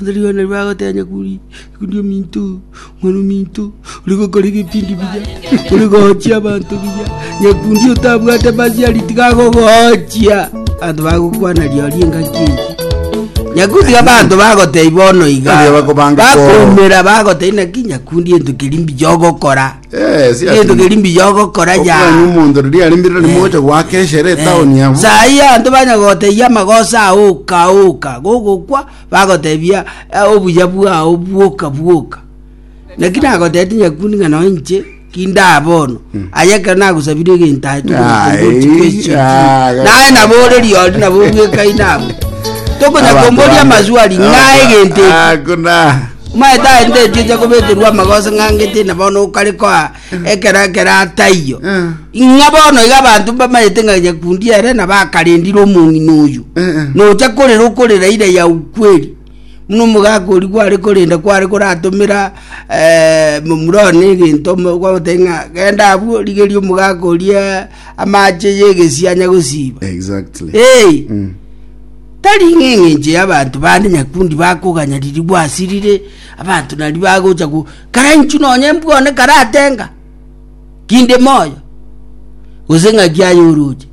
Rirorio nario bagotebia ng'akuri, Ikundi ominto, mwana ominto, ore gokora ebipindi biya, ore gochia abanto biya, nyakundi otabwate masiari tiga agogochia. Abanto bagokwana riori engaki eye. Nyakundi abanto bagotebia bono iga, Nario bakobanga koro. bakoumera bagotebia naki nyakundi ento keri mbiya ogokora. Eh, si ati- Ento keri mbiya ogokora ya. Okwani omonto riria ari mbirire rimoche gwaka eshere etaoni abo. sai anto banyagoteyia amagoso aoka oka gogokwa Bagotebia, Obuya bwao bwoka bwoka. Naki nagotebete nyakuni ng'a nonya inche tindaba bono, aye ekero nagosabire egento aye tokonyakomba Ai, ochiko echio ah, chio. Naye nabo ore riori nabo obwekai nabo. Tokonyakomboria amaswali ng'a egento eki. Hakuna. Maete aye ndetie ocha kobeterwa amagoso ng'angete na bono okare koa Ekero ekero ataiyo, ng'a bono iga abanto mbamanyete ng'a nyakundi ere na bakarendire omong'ina oyio. Nocha korera okorera ira ya ukweli. Muna omogaka oria kware korenda kware koratomera eh, momura one egento mo- kwagoteba ng'a genda abwo rigeria omogaka oria amache y'egesie anya gosiba. Exactly. Hey, Mm. tari ng'a eng'encho y'abanto bande nyakundi bakoganya riri gwasirire abanto nari bagocha ku Kara inchuo nonya embwone karatenga, Kinde moyo, gose ng'aki aye oroche.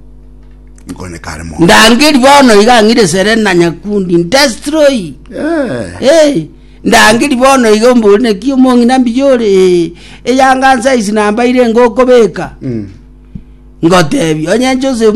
Ngone kare moyo. Ndangeri bono iga ang'ire Serena Nyakundi ndestroy. Eh. Eh, ndangeri bono iga ombori naki omong'ina mbiya ore eh, eyanga nsaisi nambaire ngokobeka. Mm. Ngotebi onye Joseph